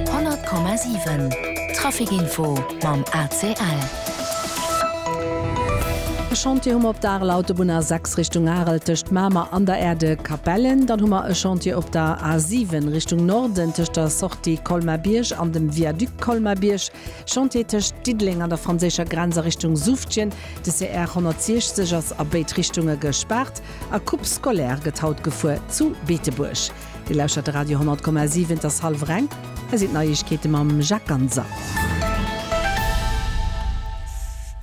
100,7 Trafic Info mam ACL. E Chantier hu mer op der Areler Autobunn A6 Richtung Arel tëscht Mamer an der Aire de Capellen. Dann hu mer e Chantier op der A7 Richtung Norden tëscht der Sortie Colmar-Bierg an dem Viaduc Colmar-Bierg. Chantier tëscht Diddeleng an der franséischer Grenz a Richtung Suftjen. De CR 160 ass a béid Richtunge gespaart. A Coupe scolaire gëtt haut gefuer zu Beetebuerg. Dir lauschtert de Radio 10,7, et ass hallwer eng. Hei sinn d'Neiegkeete mam Jacques Ganser.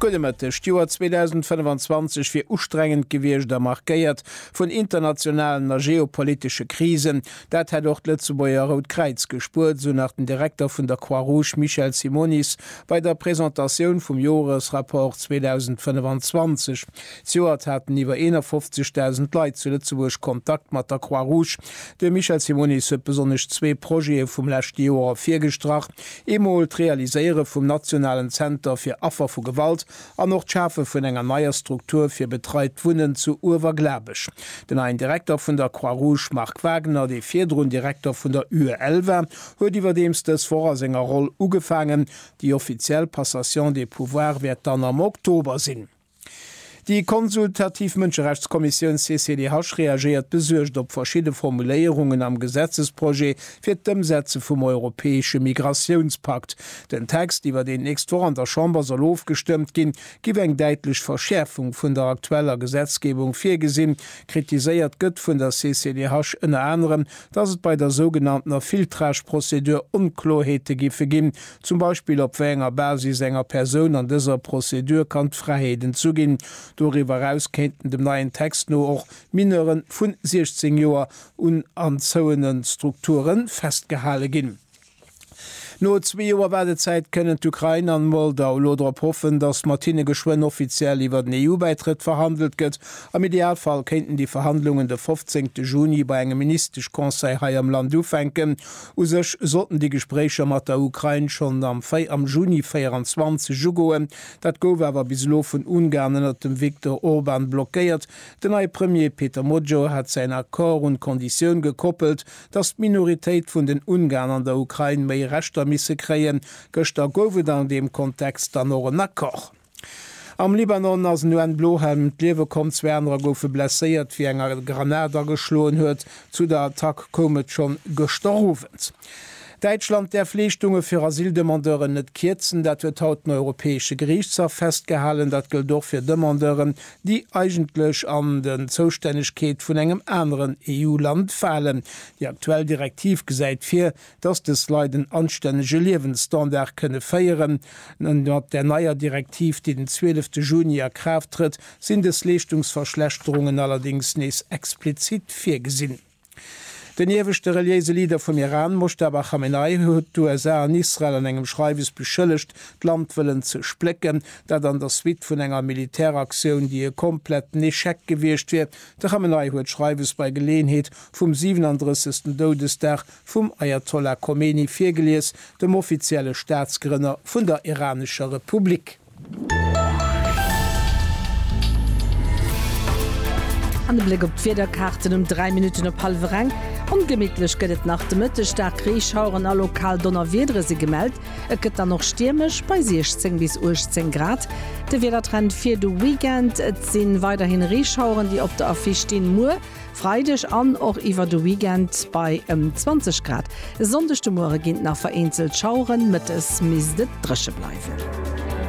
Gudde Mëtteg. D'Joer 2025 wier ustrengend gewiescht a markéiert vun internationalen a geopolitesche Krisen. Dat hätt och d'Lëtzebuerger Rout Kräiz gespuert, esou nach den Direkter vun der Croix Rouge Michel Simonis bei der Presentatioun vum Joresrapport 2025. Zejoert haten iwwer 51.000 Leit zu Lëtzebuerg Kontakt mat der Croix Rouge. De Michel Simonis huet besonnesch zwee Projete vum leschte Joer ervirgestrach, eemol d'Realiséiere vum nationalen Zenter fir Affer vu Gewalt an och d'Schafe vun enger neier Struktur fir betreit Wunnen zu Uewerglabech. Den neien Direkter vun der Croix Rouge Marc Wagner, dee virdrun Direkter vun der UEL war, huet iwwerdeems dës Woch a senger Roll ugefaangen. Déi offiziell Passation des pouvoirs wäert dann am Oktober sinn. Déi konsultativ Mënscherechtskommissioun CCDH reagéiert besuergt op verschidde Formuléierungen am Gesetzesprojet fir d'Ëmsetze vum europäesche Migratiounspakt. Den Text, iwwer deen d'nächst Woch an der Chamber soll ofgestëmmt ginn, géif eng däitlech Verschäerfung vun der aktueller Gesetzgebung virgesinn. Kritiséiert gëtt vun der CCDH ënner anerem, datt et bei der sougenanntener Filtrage-Prozedur Onkloerheete géife ginn, Zum Beispill op wéi enger Basis enger Persoun an dëser Prozedur kann d'Fräiheet entzu ginn. Doriwwer eraus kéinten dem neien Text no och Mineure vu 16 Joer un anzouene Strukture festgehale ginn. No zwee Joer Waardezäit kënnen d'Ukrain an d'Moldau elo drop hoffen, datt mat hinne geschwënn offiziell iwwer den EU-Bäitrëtt verhandelt gëtt. Am Idealfall kéinten déi Verhandlungen de 15 Juni bei engem Ministesch-Conseil hei am Land ufänken. U sech sollten déi Gespréicher mat der Ukrain schonn am am Juni 24 ugoen. Dat gouf awer bis elo vun Ungarn ënnert dem Viktor Orban blockéiert. Den neie Premier Peter Magyar hat säin Accord un d'Konditioun gekoppelt, datt d'Minoritéit vun den Ungarn an der Ukrain méi Rechter misse kréien. Gëschter gouf et an deem Kontext dann och en Accord. Am Libanon ass en UN-Blohelm ëm d'Liewe komm, zwee anerer goufe blesséiert, wéi eng eng Granat ageschloen huet. Zu der Attack koum et schonn gëschter Owend. Däitschland däerf Leeschtunge fir Asyldemandeuren net kierzen. Dat huet haut den Europäesche Geriichtshaff festgehalen. Dat gëllt och fir Demandeuren, déi eigentlech an den Zoustännegkeet vun engem aneren EU-Land falen. Déi aktuell Direktiv gesäit vir, dass dës Leit en anstännege Liewensstandard kënne féieren. Mat der neier Direktiv, déi den 12 Juni a Kraaft trëtt, sinn dës Leeschtungsverschlechterungen allerdéngs nees explizit virgesinn. Den ieweschte reliéise Leader vum Iran, Mojtaba Khamenei, huet d'USA an Israel an engem Schreiwes beschëllegt, d'Land wëllen ze splécken. Dat an der Suite vun enger Militäraktioun, déi e kompletten Echec gewiescht wier. De Khamenei huet d'Schreiwes bei Geleeënheet vum 37. Doudesdag Vum Ajatollah Khomeini virgelies, dem offizielle Staatsgrënner vun der iranescher Republik. An e Bléck op d'Wiederkaarten um 3 Minutten op hallwer eng. Ongemittlech gëtt et nach de Mëtteg, staark Reeschaueren a lokal Donnerwiedere si gemellt. Et gëtt dann och stiermesch, bei 16 bis 18 Grad. De Wiedertrend fir de Weekend, Et si weiderhi Reeschaueren, déi op der Affiche stinn. Muer. Freideg an och iwwer de Weekend bei ëm 20 Grad. E Sonndeg de Muere ginn nach vereenzelt Schaueren, mëttes misst et dréche bleiwen.